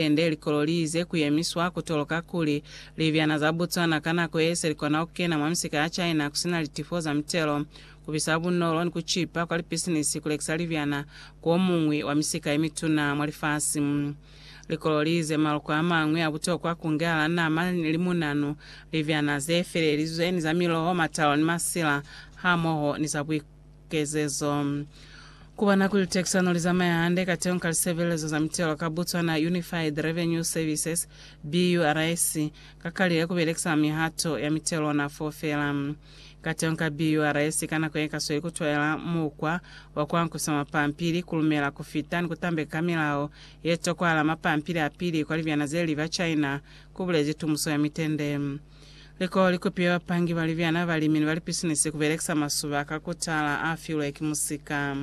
Hande likololi ze kuyemiswa kutoloka kuli libyana za Botswana ka nako ye se likona kukena mwa misika ya China kusina litifo za mitelo, kubisa bunolo ni kucipa kwa lipisinisi kulekisa libyana ku omuñwi wa misika yemituna mwa lifasi. Likololi ze maloko amañwi a butokwa ku ngehala nama, limunanu, libyana ze felelizwe ni za miloho, matalo ni masila, hamoho ni za buikutlo. kezezo. Ku bona kuli litekisano li zamaya hande kateñi ka lisebelezo za mitelo ka Botswana Unified Revenue Services, BURS, ka kalile ku belekisa mihato ya mitelo ona foo feela. Kateñi ka BURS ka nako ye ka sweli ku twaela mukwa wa ku ankwisa mapampili, ku lumela, ku fita ni ku tambeka ka milao ye tokwahala mapampili a pili kwa libyana ze li ba China, ku bulezi Tumuso ya Mitende. Liko likupiwa bapangi ba libyana, balimi ni balipisinisi kubelekisa masuba ka kutala afilwe ki musika.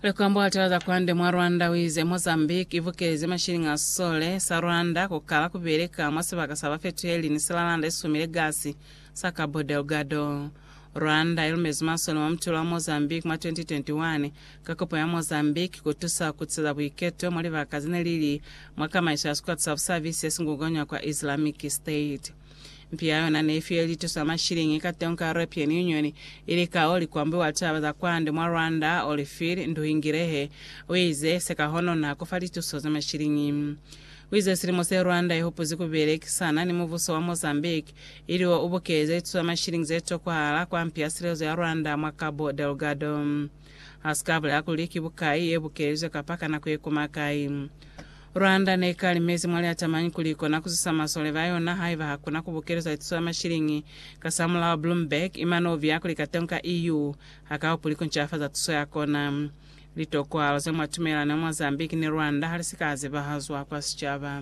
Likombo litala za kwande mwa Rwanda uize Mozambique ibukezi mashilingi a sisole sa Rwanda kukala kubeleka mwa sibaka sa bafetuheli ni silalanda isumile gasi sa Cabo Delgado. Rwanda i lumezi masole mwa mutulo wa Mozambique mwa 2021 ka kopo ya Mozambique ku tusa ku tiza buiketo mwa libaka ze ne li li mwa kamaiso ya sikwata sa busabisi se si ngukanywa kwa Islamic State. Mpi ya yona ne i file lituso ya mashiliñi ka tengo ka European Union, ili ka o li kwa mbi wa litaba za kwande mwa Rwanda, Olifir Nduhingirehe, u ize, Se ka hononha ku fa lituso za mashiliñi. U ize silimo se Rwanda i hupuzi ku belekisana ni mubuso wa Mozambique, ili o ubukeze ituso ya mashilingi ze tokwahala kwa mpi ya silezo ya Rwanda mwa Cabo Delgado. Ha si ka bulela kuli ki bukai ye bukelizwe kapa ka nako ye koma kai. Rwanda ne i kalimezi mwa liatamañi kuli i kona ku zusa masole ba yona haiba ha kona ku bukelezwa ituso ya mashilingi. Kasamulaho, Bloomberg i mane u biya kuli katon ka EU ha ka hupuli ku ncafaza tuso ya kona. Litokwahalo ze mwa tumelano ya Mozambique ni Rwanda ha li si ka zebahazwa kwa sicaba.